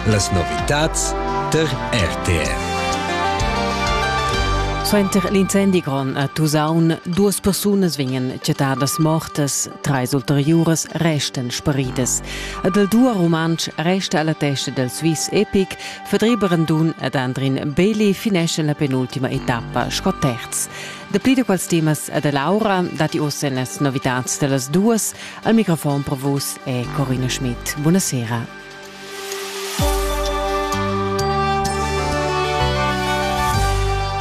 Las novitads tar RTR. Suenter l'incendi grond a Tusaun duas persunas vegnan chattadas mortas, treis ulteriuras restan sparidas. Ed il duo rumantsch resta alla testa del Swiss Epic, Fedri Brandun ed Andrin Beli finescen la penultima etappa sco terz. Dapli da quels temas e da Laura dati ossa las novitads dellas duas, Al microfon per vos è Corina Schmidt. Buonasera.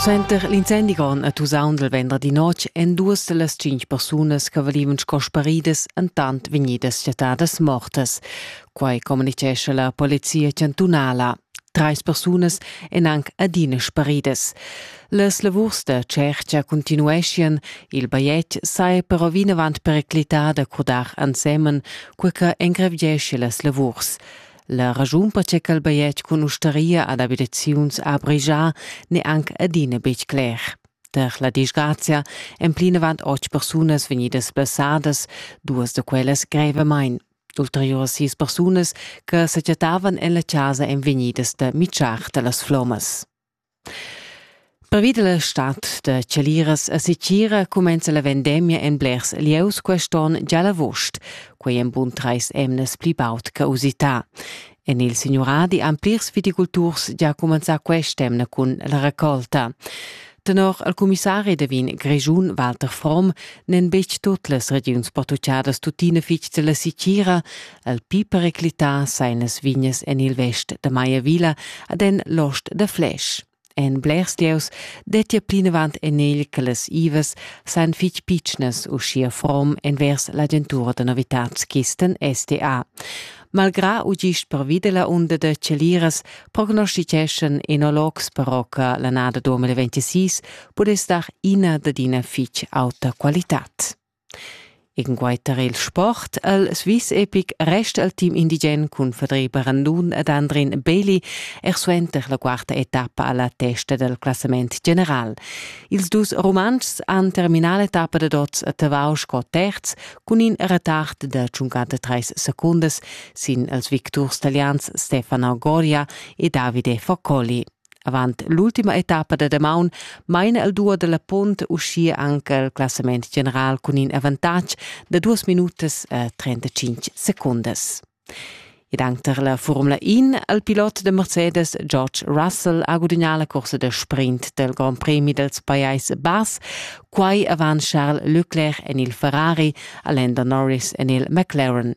Suenter l'incendigon a Tusaun del venderdi notg èn duas de las cinc persunas che valivan sco sparidas entant vegnidas chattadas mortas. Quai communicescha la polizia chantunala. Treis persunas èn anc adina sparidas. Las lavurs da tschertga continueschian, il bajetg saja però vinavant periclità da curdar ensemen, cur che engrevgiescha las lavurs. La raschun per che quel bajetg cun ustaria ad abitaziuns ha brigià n'è anc adina betg cler. Per la disgrazia èn plinavant otg persunas vegnidas blessadas, duas da quellas grevamain. Ulteriuras sis persunas che secetavan en la casa èn vegnidas da mitschar da las flommas. Pervi da la stad da chaliras a Sicira cumenza la vendemia en blers lieus quest'onn già l'agost. Quai en bun trais emnas pli baud che usità. En il signuradi han plirs viticulturs gia cumenzà quest'emna cun la racolta. Tenor il cumissari da vin Grischun Walter Fromm n'en betg tut las regiuns portugiadas tuttina fitg della sicira. Il pi periclità sain las vignas en il vest da Maiavila ad en l'ost da Flesch. En blers dieus dettia plinavant en egl che las ivas sajan fitg pitschnas uschia from envers l'agentura da novitads Kisten SDA. Malgrà u gist pervi da la unda da celiras prognostiteschan enologs però che l'annada 2026 pudess dar ina dad ina fitg auta qualitad. Incunquei tar il sport el Swiss epic resta il team indigen cun Federica Randun ed Andrin Beeli er suenter la quarta etappa alla testa del classament general. Ils dus Rumantschs han terminà l'etappa da dots a Tavau sco terz cun in retard de 53 secundas sin els victurs talians Stefano Goria e Davide Faccoli. Avant l'ultima etappa da damaun maina el duo dalla punt uschia anc il classament general cun in avantatg da duas minutas e 35 secundas. Ed anche tar la Formula 1 il pilot da Mercedes George Russell ha gudagnà la corsa da sprint del Grand Premi dels Pajais Bass Quai avant Charles Leclerc en il Ferrari, Alain Norris en il McLaren.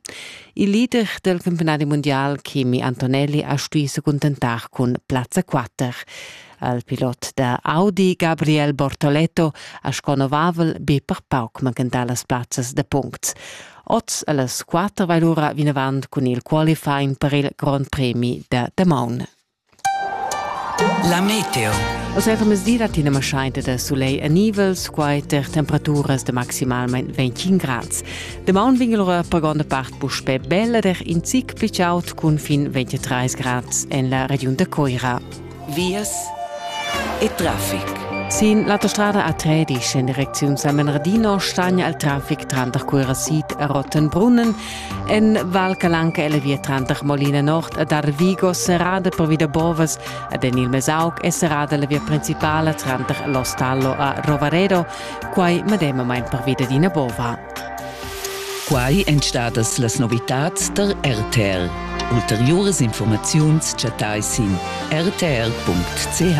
Il leader del campionat mondial Chemi Antonelli ha stuì se contentar cun plazza 4. Al pilot da Audi Gabriel Bortoletto ha sco novavel be per pauc manchentà las plazzas da punct. Oz alles quatter vai lura vinavant cun il qualifying per il Grand Premi da Damaun. La meteo. Oz è mesira tina maschainta da sulegl a nivels, quai ter temperaturas de maximalment 25 grads. De maun vingel ora per gonda part puspe bella der in zic più aut cun fin 23 grads en la region de Coira. Vias e traffic. Sin l'autostrada A3 dice in direczione San Bernardino stagna il traffic tranter Coira Sid e Rottenbrunnen En Val Calanca è la via tranter Molina Nord ed Arvigo serrada pervi da bovas ed en il Mesauc è serrada la via principala tranter l'Ostallo a Rovaredo, quai medemamain pervi dad ina bova. Quai èn stadas las novitads da RTL. Ulteriuras informaziuns chattai sin rtl.ch.